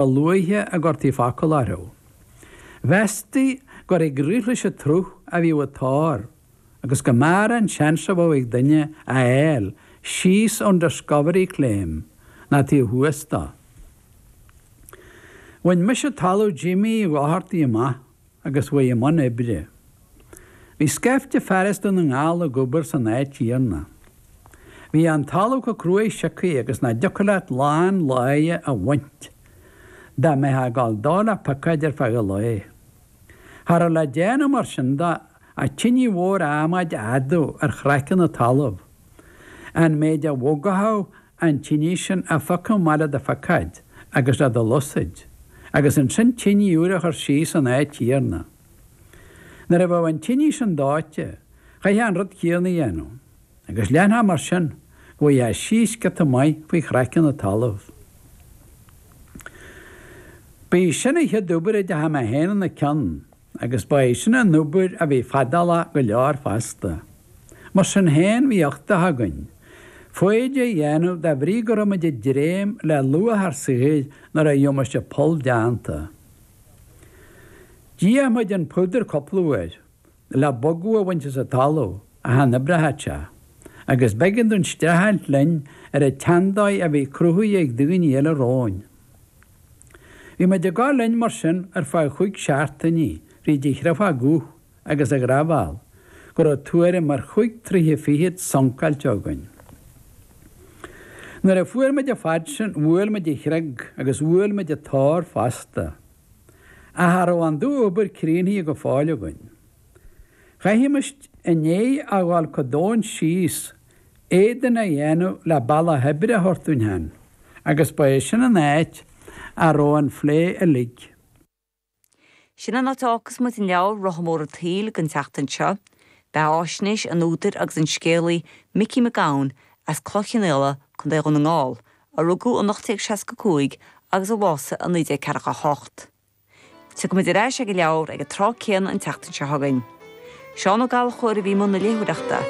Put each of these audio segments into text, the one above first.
A luaithe a gcuirtí focal orthu, mheastaí gur ag rith leis an tsruth a bhíodh an t-ór agus go mb'fhearr an seans a bheadh ag duine a fháil síos ón Discovery Claim ná taobh thuas dó. Bhain mise talamh Jimmy Uí Dhochartaigh amach. agus chuaigh i mbun oibre. Bhí scaifte fear as Dún na nGall ag obair san áit chéanna. Bhí an talamh comh cruaidh siocaithe agus nach dtiocfadh leat lán láí a bhaint dá mbeifeá ag gabháil dó le piocóid ar feadh an lae. Cha raibh le déanamh mar sin de ach tine mhór adhmaid a fhadú ar chraiceann an talaimh, an méid a bhogfadh an tine sin a phiocadh amach le do phiocóid agus le do shluasaid, agus ansin tine úr a chur síos san áit chéanna. Nuair a bheadh an tine sin dóite, chaithfeá an rud céanna a dhéanamh, agus leanfá mar sin go bhfaighfeá síos giota maith faoi chraiceann an talaimh. Ba í sin an chéad obair a dteachaidh mé féin ina cionn. Agus ba é sin an obair a bhí fadálach go leor fosta. Mar sin féin, bhí uchtach againn foighid a dhéanamh de bhrí go raibh muid ag dréim le luach ár saothair nuair a gheobhaimis an poll déanta. D'fhéach muid an púdar cúpla uair le bogadh a bhaint as an talamh ach chan oibreodh sé agus b'éigean dúinn streachailt linn ar an tseandóigh a bhí cruthaithe ag daoine eile romhainn. Bhí muid ag gabháil linn mar sin ar feadh chúig seachtainí fríd an chréafóg dhubh agus an ghraibhéal go raibh tuairim ar chúig troighe fichead suncáilte againn. Nuair a fuair muid an fad sin bhuail muid an chreag agus bhuail muid an t-ór fosta. Ach cha raibh an dú-obair críochnaithe go fóill againn. Chaithfimis an fhéith a fháil comh domhain síos éadan a dhéanamh le bealach oibre a thabhairt dúinn féin agus ba é sin an áit a raibh an phlé uilig. Sin an áit a fhágfas muid an leabhar Rotha Mór an tSaoil don tseachtain seo. Beathaisnéis an údair agus an scéalaí Micí Mac Gabhann as Cloich Chionnaola, Co. Dhún na nGall, a rugadh in 1865 agus a bhásaigh in 1948, Tiocfaidh muid ar ais ag an leabhar ag an tráth céanna an tseachtain seo chugainn. Seán Ó Gallchóir a bhí i mbun na léitheoireachta.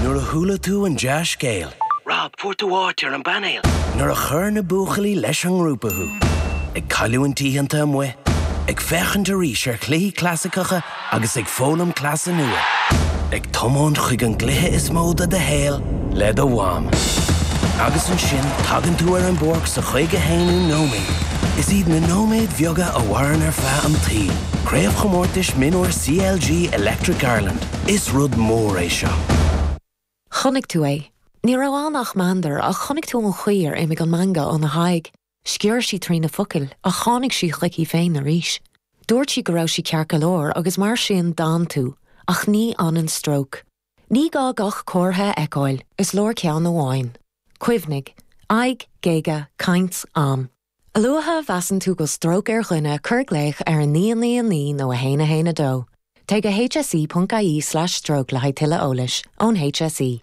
Nuair a chuala tú an dea-scéal. Rob, fuair tú áit ar an bpainéal! Nuair a chuir na buachaillí leis an ngrúpa thú. Ag cailliúint oícheanta amuigh. Ag féachaint arís ar chluichí clasaiceacha. agus ag foghlaim cleasa nua. Ag tiomáint chuig an gcluiche is mó de do shaol le do mham. Agus ansin tagann tú ar an bpáirc sa chaoga a haonú nóiméad. Is iad na nóiméid bheaga a mhaireann ar feadh i bhfad. Craobhchomórtais Mionúir CLG Electric Ireland, is rud mór é seo. Chonaic tú é. Ní raibh ann ach meandar ach chonaic tú an chaoi ar imigh an meangadh óna haghaidh. Sciorr sí trí na focail ach tháinig sí chuici féin arís. Dúirt sí go raibh sí ceart go leor agus mar sin d'fhan tú, ach ní fhanann stróc. Ní gá gach comhartha a fheiceáil, is leor ceann amháin. Cuimhnigh, aghaidh, géaga, caint, am. A luaithe a mheasann tú go stróc ar dhuine cuir glaoch ar 999 nó 112. Téigh go hse.ie/stróc le haghaidh tuilleadh eolais ón HSE.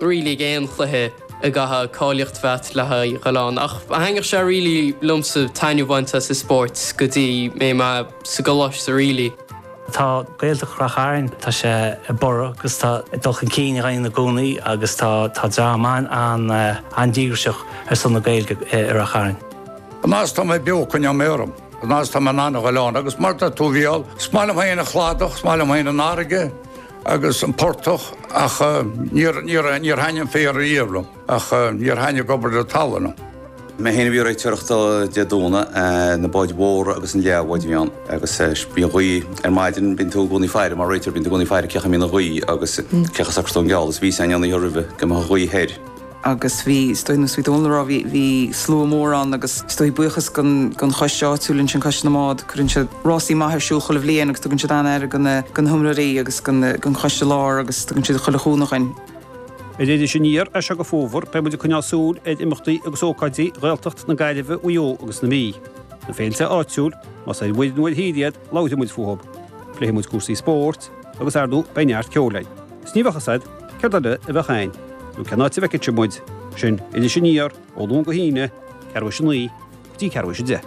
really aon chluiche a gcaithfeá cáilíocht a bheith a'd le haghaidh a dhul ann ach thaitnigh sé really liomsa taitneamh bhaint as an spórt go dtí raibh mé sa gcoláiste really. Tá Gaeltacht Rath Chairn tá sé ag borradh agus tá ag dul chun cinn i gcónaí i gcónaí agus tá tá dream an an an díograiseach ar son na Gaeilge i Rath Chairn. An fhad is atá mé beo coinneoidh mé orm an fhad is atá mé in ann a dhul ann agus mar a dúirt tú bhuel is maith liom féin an cladach is maith liom féin an fharraige, agus an portach ach níor thaitin an féar ariamh liom ach níor thaitin obair le talamh. Mé féin a bhí ag réiteoireacht Dé Domhnaigh, na báid mhóra agus an leathbhád a bhí ann agus bhí gaoth ar maidin, bíonn tú i gcónaí faire, mar réiteoir, bíonn tú i gcónaí faire cén chaoi a mbíonn an ghaoth agus cén chaoi a socrófá an geal agus bhí sé ag déanamh amach roimhe, go mbeadh an ghaoth soir. agus bhí, is dóigh, ar nós a bhí Dónall ag rá, bhí, bhí slua mór ann agus is dóigh, buíochas don, don choiste áitiúil ansin, Coiste na mBád, cuireann siad rásaí maith ar siúl chuile bhliain agus tugann siad an-aire do na, do na hiomróirí agus do na, don Choiste Lár agus tugann siad chuile chúnamh dhuinn. Ar Iris Aniar as seo go Fómhar beidh muid ag coinneáil súil ar imeachtaí agus ócáidí Ghaeltacht na Gaillimhe, Mhaigh Eo agus na Mí. Na féilte áitiúil, más ar mhuir nó ar thír iad, Labhróidh muid fúthu, pléifidh muid cúrsaí spóirt agus, ar ndóigh, beidh neart ceoil ann. Is ní bheadh fhios a'd céard eile a bheadh ann, nó cén áit a bhfeicfeá muid sin, Iris Aniar, ó Luan go hAoine, ceathrú tar éis a naoi go dtí ceathrú tar éis a deich.